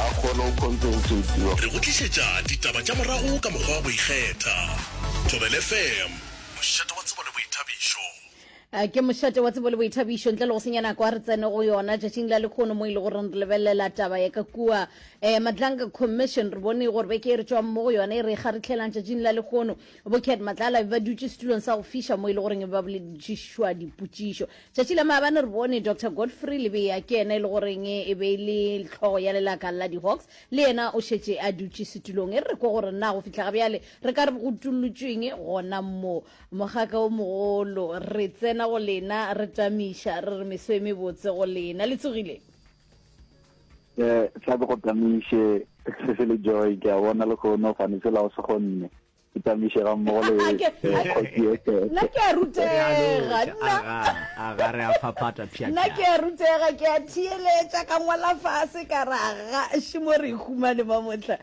a kgone go compensatiwa. Re go tlišetša ditaba tša morago ka mokgwa wa go ikgetha. Thobela FM, mošate wa tsebo le boithabišo. A Ke mošate wa tsebo le boithabišo. Ntle le go senya nako, a re tsene go yona tšatšing la lekgono mo e le goreng re lebelela taba ya ka kua eh, Madlanga Commission. Re bone gore beke e re tšwang mo go yona e re ga re tlhelang tšatšing la lekgono, bo Cat Matlala e ba dutše setulong sa go fiša mo e le goreng e ba boledišišwa dipotšišo. Tšatši la maabane re bone Doctor Godfrey Lebeya, ke yena e le goreng e be e le hlogo ya lelaka la di-Hawks, le yena o šetše a dutše setulong. E re re kwe gore na go fihla ga bjale re ka re go utollotšweng gona mo. Mogaka wo mogolo, re tsena go lena, re tamiša, re re meso e mebotse go lena. Le tsogile? Ee, sa ke go tamiše, se se le Joy, ke a bona lehono, fane sela o se go nne. ke tamiše ga mmogo le nna ke a rutega nna re a phapata pša nna ke a rutega ke a theeletša ka ngwala fase ka ra ga šimo re humane ba motla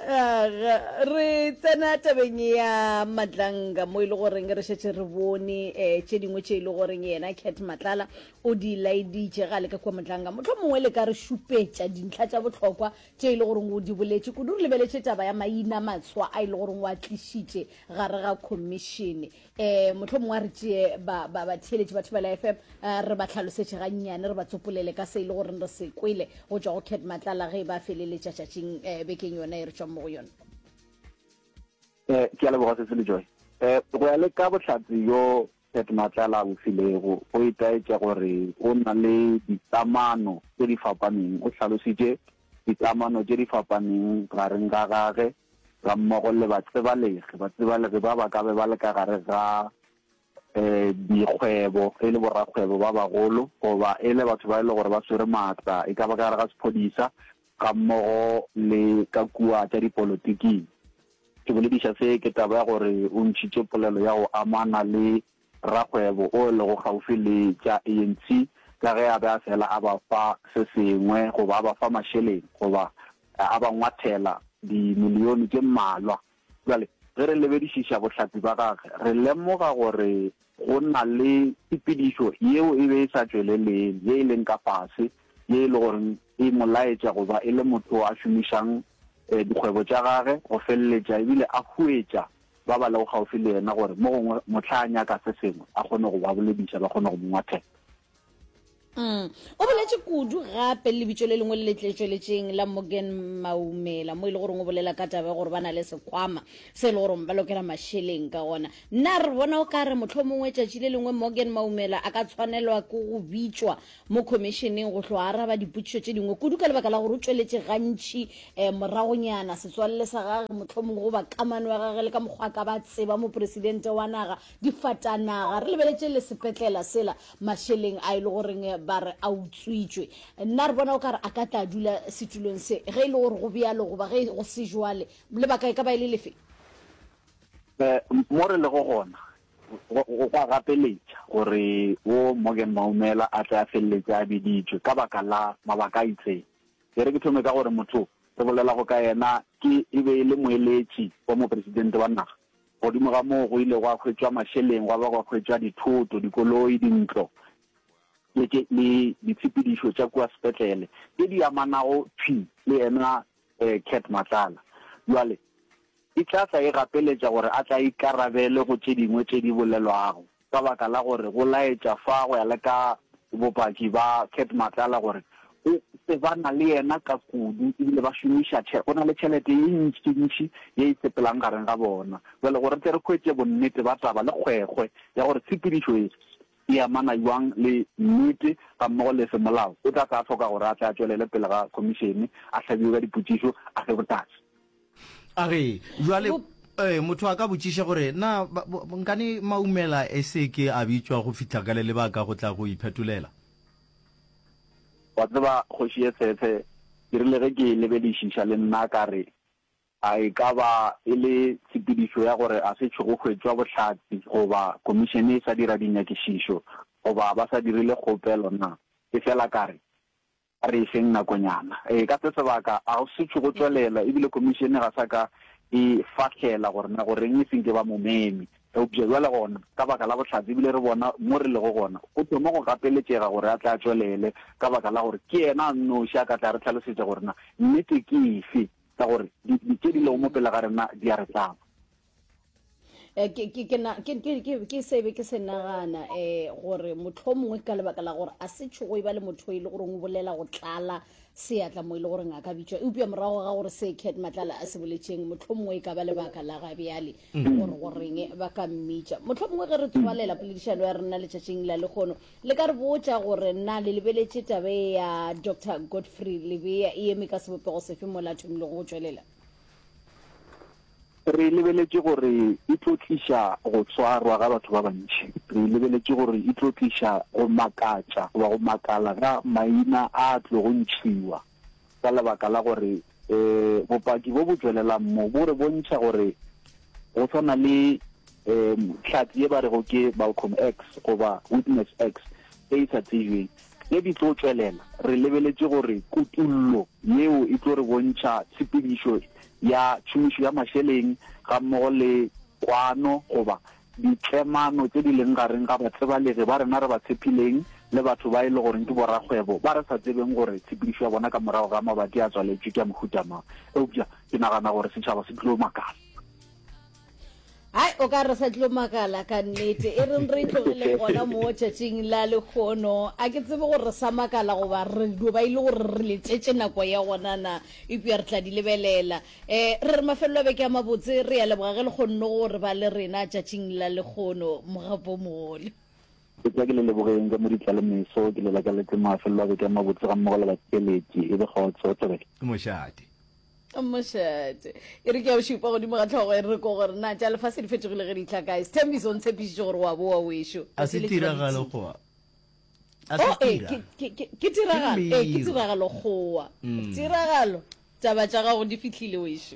re tsena tabeng ya matlanga mo e le goreng re šetse re bone um tše dingwe tše e le goreng yena cat matlala o di laeditše ga le ka kua matlanga motlho mongwe le ka re šupetša dintlha tša bohlokwa tše e le goreng o di boletše, kudu re lebeletše taba ya maina matswa a e le goreng o a tlišitše gare ga khomišene. Um mohlomongwe a re tšee ba, ba, batheeletši ba Thibela FM um eh, re ba tlhalosetše gannyane, re ba tsopolele ka se e le goreng re se kwele go tšwa go cat matlala ge e ba feleletša tšatšing um bekeng yona e re tšwang mo go yone. um ke a leboga se se le joy um go ya le ka bohlatse yo Pat Matlala a bofilego go itaetša gore o na le dikamano tše di fapaneng. O hlalositše dikamano tše di fapaneng gareng ga gage gammogo le batsebalegi batsebalegi ba ba ka be ba le ka gare ga dikgwebo e le borakgwebo ba bagolo goba e le batho ba e le gore ba swere maatla e ka ba ka gare ga sephodisa gammogo le ka kua tša dipolotiking. Ke bolediša se ke taba ya gore o ntšhitše polelo ya go amana le rakgwebo o lego kgaufsi le tša ANC ka ge a be a fela a ba fa se sengwe goba a ba fa mašeleng goba a ba ngwathela dimilione tše mmalwa Bjale, ge re lebedišiša bohlapi ba gage, re lemoga gore go na le tshepedišo yeo e be e sa tšweleleng, ye e leng ka fase, ye e le gore e mo laetša go ba e le motho yo a šomišang dikgwebo tša gage go feleletša e bile a huetša ba ba lego kgaufsi le yena gore mo gongwe mohla a nyaka se sengwe a kgone go ba bolediša, ba kgone go mo ngwathela. Mm. o boletše kudu gape le lebitso le lengwe le le tletšweletšeng la morgan maumela mo e le goreng o bolela ka taba gore ba na le sekhwama se e le goreng ba lokela mašeleng ka gona nna re bona o ka re motlho mongwe tšatši le lengwe morgan maumela a ka tshwanelwa ke go bitšwa mo khomišeneng go tloga araba dipotšišo tše dingwe kudu ka lebaka la gore o tšweletše gantši um moragonyana setswalele sa gage motlho mongwe goba kamano ya gage le ka mokgwa ka ba tseba mopresidente wa naga Difatanaga, re lebeletše le sepetlela sela mašeleng a e le goreng ba re a utswitšwe. Nna re bona o ka re a ka tla dula setulong se ge e le gore go bjalo goba ge go se jwale. Lebaka e ka ba e le lefe? Mo re lego gona go go a gapeletša gore wo Morgan Maumela a tle a feleletše a biditšwe ka baka la mabaka a itseng. E re ke thome ka gore motho re bolelago ka yena ke e be e le moeletši wa Mopresidente wa naga, Godimo ga moo go ile gwa hwetšwa mašeleng, gwa ba gwa hwetšwa dithoto, dikoloi, dintlo le ke, le ditshepedišo tša kua sepetlele tše di amanago thwi le yena eh, Cat Matlala. Bjale e tla tla e gapeletša gore a tla ikarabele go tše dingwe tše di bolelwago. ka baka la gore go laetša fa go ya le ka bopaki ba Cat Matlala gore o tsebana le yena ka kudu ebile ba šomiša tšhe, go na le tšhelete ye ntšintši ye e sepelang gareng ga bona. Jwale gore tle re hwetše bonnete ba taba le kgwekgwe ya gore tshepedišo ye e amana bjang le nnete gammogo le semolao, o tla tla hloka gore a tle a tšwelele pele ga khomišene, a hlabiwe ka dipotšišo, a fe botaki. A re, Bjale, ee, motho a ka botšiša gore, Na ba, ba, nkane Maumela e se ke a bitšwa go fihla ka le lebaka go tla go iphetolela? Wa tseba, Kgoši ye Tsheetshe, ke rile ge ke e lebelišiša le nna ka re, A e ka ba e le tshepedišo ya gore ga se tšhogo hwetšwa bohlatse, goba Khomišene e sa dira dinyakišišo, goba ba sa dirile kgopelo na? Efela ka re, A re e feng nakonyana e ka se sebaka a go se tšhogo tswelela e bile Khomišene ga sa ka e fahlela gore na go reng e senke ba mo meme. Eupša bjale gona ka baka la bohlatse e bile re bona mo re lego gona go thoma go gapeletšega gore a tle a tšwelele ka baka la gore ke yena a nnoši a ka tla a re hlalosetša gore na nnete ke efe ka gore di tše di lego mo pele ga rena di a re tlaba. Eh, ke ke ke na ke ke ke ke se be ke se nagana eh gore motho mongwe ka lebaka la gore a se tshogo e ba le motho e le gore o bolela go tlala seatla mo e le gore ngaka bitšwa eupša morago ga gore se cat matlala a se boletšeng motho mongwe e ka ba lebaka la ga bjale mm. gore goreng ba ka mmitša motho mongwe ge re tswalela poledišano ya rena letšatšing la lekgono le ka re botša gore na le lebeletše tabe ya dr godfrey lebea e eme ka sebopego sefe mo lathomilego go tšwelela Re lebeletše gore e tlo tliša go swarwa ga batho ba bantši. Re lebeletše gore e tlo tliša go makatša goba go makala ga maina a a tlogo ntšhiwa ka lebaka la gore um bopaki bo bo tšwelelang mo bo re bontšha gore go swana le um hlatse ye ba rego ke Malcolm X goba Witness X e e sa tsebjweng. Tše di tlo tšwelela, re lebeletše gore kutollo yeo e tlo re bontšha tshepedišo ya tšhomišo ya mašeleng gammogo le kwano goba ditlemano tše di leng gareng ga batsebalegi ba rena re ba tshepileng le batho ba e le goreng ke borakgwebo ba re sa tsebeng gore tshepedišo ya bona ka morago ga mabati a tswaletšwe ke ya mohuta mang. Eupša ke nagana gore setšhaba se tlo makala. hai o ka re sa tlo makala ka nnete e reng re itlogele gona mo tšatšing la lekgono a ke tsebe gore sa makala goba re dio ba ile gore re letšetše nako ya gonana epja re tla di lebelela um re re mafelelo a beke ya mabotse re ya leboga ge le kgonne gore ba le rena tšatšing la lekgono mogapo mogole etsa ke le lebogeng ka mo ditla le meso ke lela ka letse mafelelo a beke ya mabotse ga mmogo le bakeletši e be kgotso thabele mošate Mošate e re ke ya o šupa godimo ga tlhogo e re ko gore na tša lefase di fetogile ge di tla kae sethembiso o ntshepišitše gore wa boa wešo a se tiragalo goa a se oh, eh, tira ke tiragalo eh, ke tiragalo goa mm. tiragalo taba tša gago di fihlile wešo